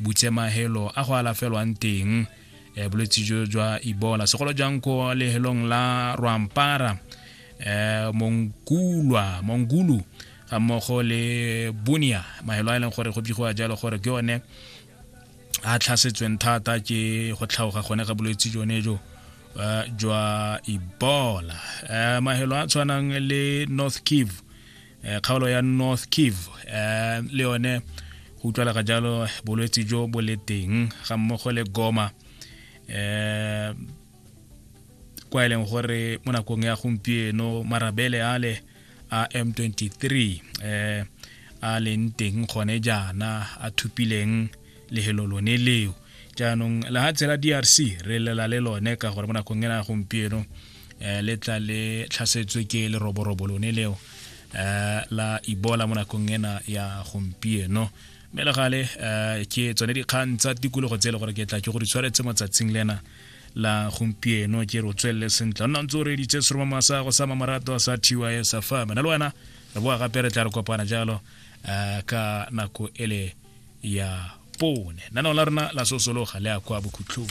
butsemagelo a go alafelwang teng eh, bolwetse jo jwa ebola segolo jang ko lehelong la rwampara eh, mongkulwa mongulu ga mmogo le bunia mahelo a e leng gore go bigoa jalo gore ke one a tlhasetsweng thata ke go tlhaoga gone ga bolwetse jone jo eh, jwa ebola eh, mahelo a tshwanang le north kivu eh, kgaolo ya north kiv eh, le yone go utlwala ga jalo bolwetse jo bo le teng ga mmogo le goma eh kwa e leng gore mo nakong ya gompieno marabele ale a m23 eh a leng teng gone jaana a thupileng lehelo lone leo jaanong lehatshe la drc re lela le lone ka gore mo nakong ena gompieno um le tla le tlhasetswe ke leroborobo lone leo um la ibola mo nakong ena ya gompieno mme le gale um ke tsone dikgang tsa tikologo tse e le gore ke tla ke go di tshwaretse mo tsatsing lena la gompieno ke re o tswelele sentle nna ntse o reditse seroma masa go sa mamorato sa tys fm na le wena re boa gape re tla re kopana jalo um ka nako ele ya pone nano la rona la sosologa le ya kwa bokhutlhong